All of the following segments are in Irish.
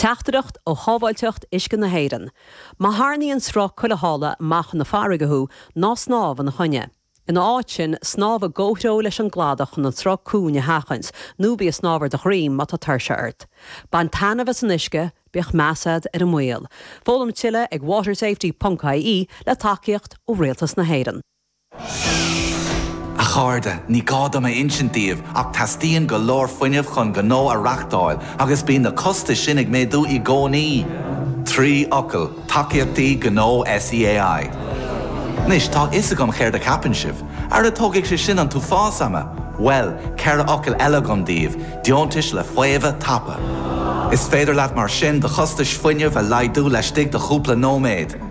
Teachtaireacht ó Shábháilteacht Uisce na hÉireann, Má tharrnaíonn sruth cúlaithe amach chun farraige thú, ná snámh ina choinne. Ina áit sin, snámh i gcomhthreo leis an gcladach chun an sruth cúng a sheachaint, nó bí ag snámh ar do dhroim má tá tuirse ort. Bain taitneamh as an uisce, bíodh meas agat ar an mbaol. Foghlaim tuilleadh ag watersafety.ie le tacaíocht ó Rialtas na hÉireann. A chairde, ní gá dom a insint daoibh ach teastaíonn go leor fuinnimh chun gnó a reachtáil agus bíonn na costais sin ag méadú i gcónaí. Trí fhocal, Tacaíochtaí Gnó SEAI. Anois, tá a fhios agam céard a cheapann sibh. Ara tógfaidh sé sin an t-uafás ama! Bhuel, ceithre fhocal eile agam daoibh, Deontais le Faomhadh Tapa. Is féidir leat mar sin do chostais fuinnimh a laghdú laistigh de chúpla nóiméad.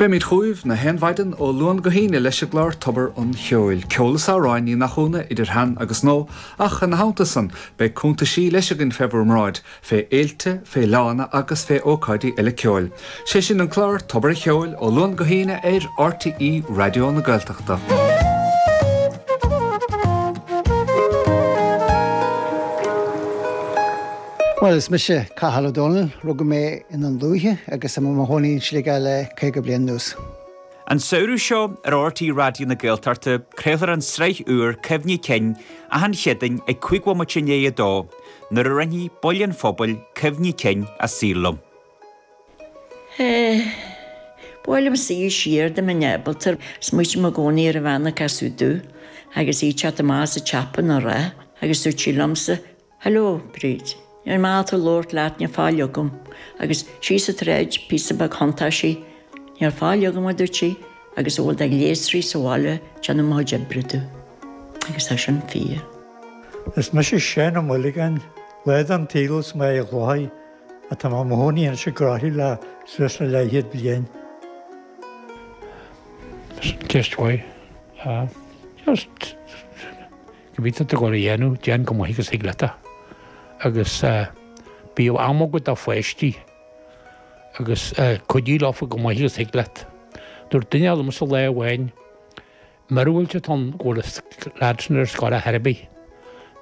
Beimid chugaibh gach aon mhaidin ó Luan go hAoine leis an gclár Tobar an Cheoil, ceol is amhráin, ní nach ionadh, idir shean agus nua, ach ina theannta san, beidh cuntaisí leis againn fé bhur mbráid, fé fhéilte, fé fhleánna agus fé ócáidí eile ceoil. 'Sé sin an clár Tobar a' Cheoil, ó Luan go hAoine ar RTÉ Raidió na Gaeltachta. Bhuel, is mise Cathal Ó Dónaill. Rugadh mé i nDún Lúiche agus tá mé i mo chónaí i Sligeach le caoga bliain anuas. An samhradh seo ar RTÉ Raidió na Gaeltachta craolfar an tsraith úr Cuimhní Cinn achan Chéadaoin ag cúig bhomaite i ndiaidh a dó nuair a roinnfidh baill den phobal cuimhní cinn a saoil liom. Ba as an Tuaisceart do m'athair in Giobraltar. is muid inár gcónaí ar an Bhanc Ghasúdaigh agus í te go maith sa tSeapáin, a rá agus dúirt sí liomsa Hello, Bríd. Ar mhaith liom labhairt leat níl faill agam agus sí sa troid píosa beag shuntáisí Níl faill agam, a dúirt sí, agus a bhfuil de ghléasraí sa bhaile déanann mo chuid oibre dú. Agus é sin fíor. Is mise Séanna Mulligan, laoide an tsaoil as Mín an Chladaigh, ach tá mé mo chónaí anois i gCroithlí le suas le leathchéad bliain. Cibé atá tú ag dul a dhéanamh, déan chomh maith agus a thig leat é. Agus bíodh am agat do pháistí agus cuidigh leo chomh maith agus a thig leat. Dúirt duine eile liomsa lá amháin, Murab fhuil iontas ort go bhfuil an leaid sin ar scoil ar chor ar bith,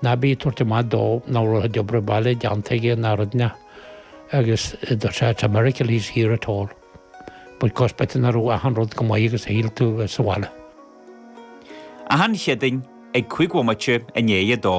ná bí ag tabhairt amach dó nach raibh an obair bhaile déanta aige ná rud, ná. Agus dúirt sé, It's a miracle he's here at all. Bhuel, gan spéid nach raibh achan rud go maith agus shíl tú bheith sa bhaile. Achan Chéadaoin ag cúig bhomaite i ndiaidh a dó.